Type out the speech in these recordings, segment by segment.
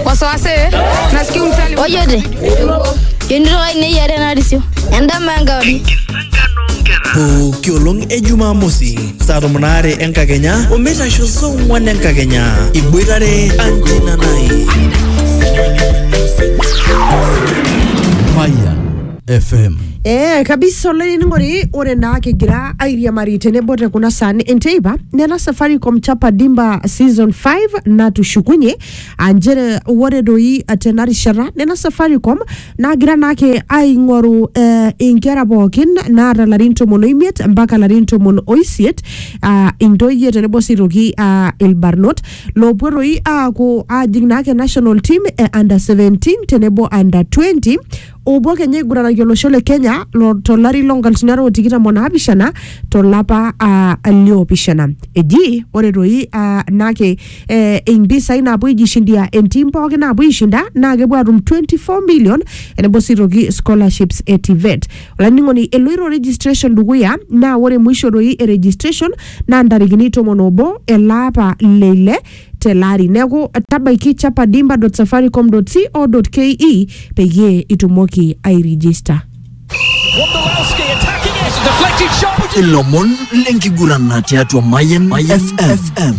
wasiwasi nasikia umtali ojote yonito ai neyiare narisio endama enkauri pooki olong e jumamosi saa tomon aare enkakenya omeitasho saa ong'wan enkakenya iboitare anjinanai Fire FM. Ee kabisa olainining'oni ore naa kigira airiamari tenebo te kuna saan enteipa nena Safaricom chapa dimba season 5 natushukunye aa nchere ore doi tena rishata nena Safaricom naagira naake aing'oru eh, inkera pookin naata larin tomon oimiet mpaka larin tomon oisiet aa intoyie tenebo sii aitoki aa ilbarnot loopuo doi aaku aajing naake national team e under 17 tenebo under 20 opuo kenya aiguranaki olosho le kenya lo- tolari lo nkalifuni are o tikitam o naapishana tolapa ah, liopishana eji ore toi ah, nake eh, impisai naapuo aijishindia entim pooki naapuo aishinda naa kepuo atum 24 million enebo sii toki scholarships e tivet olainining'oni eloito registration dukuya naa ore mwisho toi e registration naa ntarikini tomon obo elaapa leile tele ari neeku tabaiki chapadimba.safaricom.co.ke peyie itumoki airijista Wondolowski attacking it. Deflected shot. Would you ilomon lenkiguran tiatua Mayan FM.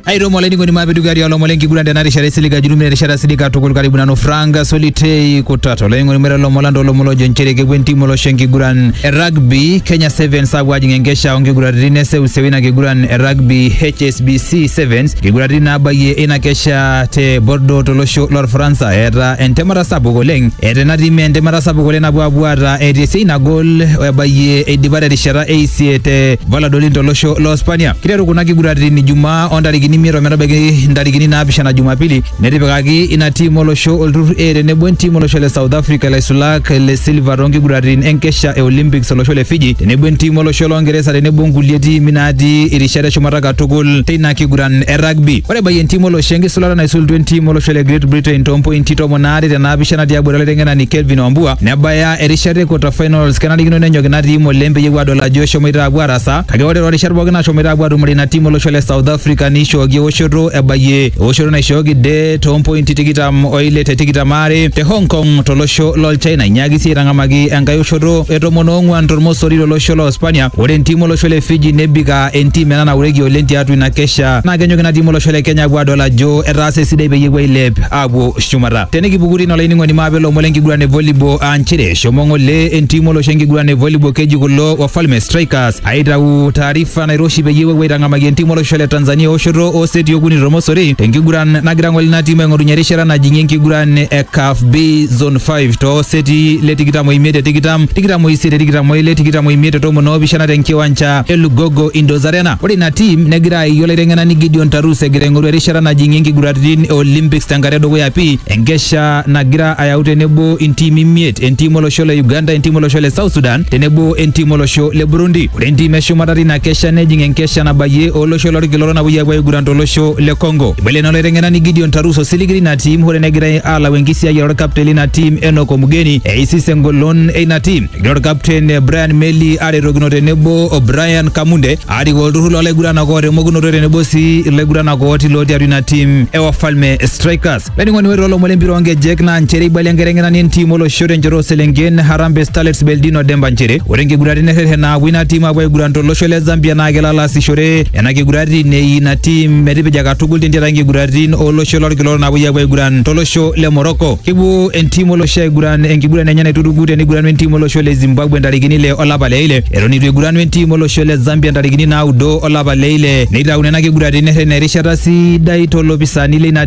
aitomo olainining'oni maapidugari olomon lenkiguran tena rishata esiliga julumina erishata silika tukul karibu nanu frank solitei kutata olainining'oni mera lomon lanta olomon lojo nchere kepuo entimu olosho enkiguran e rugby kenya sevens apuo ajing enkesha onkiguraritin eseuseu ina ina kiguran e rugby HSBC Sevens nkiguraritin naabayie ina kesha te Bordeaux tolosho lorfaransa eeta entemata sapuk oleng eeta ina tim entemata sapuk oleng napuo apuo aata etii esiai nagol ebayie eidipa terishata eisie te Valladolid tolosho lo Spania kiteru kuna kiguraritin Ijumaa ontarikini imiet ometabaiki ntarikini naapishana Jumapili Netipikaki ina tim olosho olturur A tenebo entim olosho le South Africa ilaisulak le silva toonkiguraritin enkesha e Olympics olosho le Fiji tenebo entim olosho loongeresa tenebo nkulie tiimi naatii irishat eshumata katukul teina kiguran e rugby. Ore ebayie entim olosho enkisulata naisulutua entim olosho le Great Britain toompointi tomon aare te naapishana tiabori olaiteng'enani Kelvin Wambua nebaya erishata e quarter finals kenarikino nenyok ina tim oleng peyie epuo aadol ajo eshomoita apuo aarasaa Kake ore toorishat pooki nashomoita apuo atumore ina tim olosho le South Africa neishooki ewoshoto ebayie ewoshoto naishooki de toompointi tikitam oile te tikitam aare te Hong Kong tolosho lol China inyaaki sii aitang'amaki enkae oshoto e tomon oong'uan tormosori tolosho loo Spania. Ore entim olosho le Fiji nebik aa entim ena naureki oleng tiatua ina kesha naa kenyok ina tim olosho le Kenya apuo adol ajo etaasa esidai peyie epuo ailep apuo shumata. Tenikipuku tine olainining'oni maape ilomon lenkiguran e volleyball aa nchere Shomo ng'ole entim olosho enkiguran e volleyball keji kulo Wafalme Strikers aitau taarifa nairoshi peyie epuo aitang'amaki entim olosho le Tanzania oshoto oo seti okuni tormosori tenkiguran nagira ng'ole ina tim aing'orunyie erishata najing'ie enkiguran e CAF B Zone 5 too seti le tikitam oimiet te tikitam, tikitam oisiet te tikitam oile, tikitam oimiet te tomon oopishana tenkiwanja e Lugogo Indoors Arena. Ore ina tim negira aayie olaiteng'enani Gideon Tarus egira aing'oru erishata najing'ie nkiguraritin e Olympics tenkata edukuya pii enkesha nagira ayau tenebo intiimi imiet, entiim olosho le Uganda, entiim olosho le South Sudan tenebo entiim olosho le Burundi. Ore entiim eshumata tina kesha nejing enkesha nabayie olosho lolkila orok napuoi apuo aiguran tolosho le Congo. Ibala ina olaiteng'enani Gideon Tarus osiligi lina tiim hoo negirai aalau enkisiayiare olkapten lina tiim Enock Omugeni eisis engolon eina tiim. Egira olkapten Brian Meli aretokino tenebo o Brian Kamunde aarik olturrur loolaiguranak oota emokunoto tenebo sii ilaiguranak ooti lootii atua ina tiim e Wafalme Strikers. Laining'oni ore olomon lempira oonkejek naa nchere eibalia enkiteng'enani entim olosho tenchoto ooselenken Harambee Starlets Beldino Demba nchere ore nkiguraritin errerren naapuo ina tim apuo aiguran tolosho le Zambia naa kelo alo aasishore nena kiguraritin eii ina tim metipija katukul tentiaraki nkiguraritin olosho lolkila orok naapuoi apuo aiguran tolosho le Morocco. Kepuo entim olosho aiguran enkiguran enye naituruku teneiguranu entim olosho le Zimbabwe ntarikini ile olapa le ile eton eitu eiguranu entim olosho le Zambia ntarikini naudo olapa le ile neitau nena kiguraritin errerren erishata sidai to lopisaani leina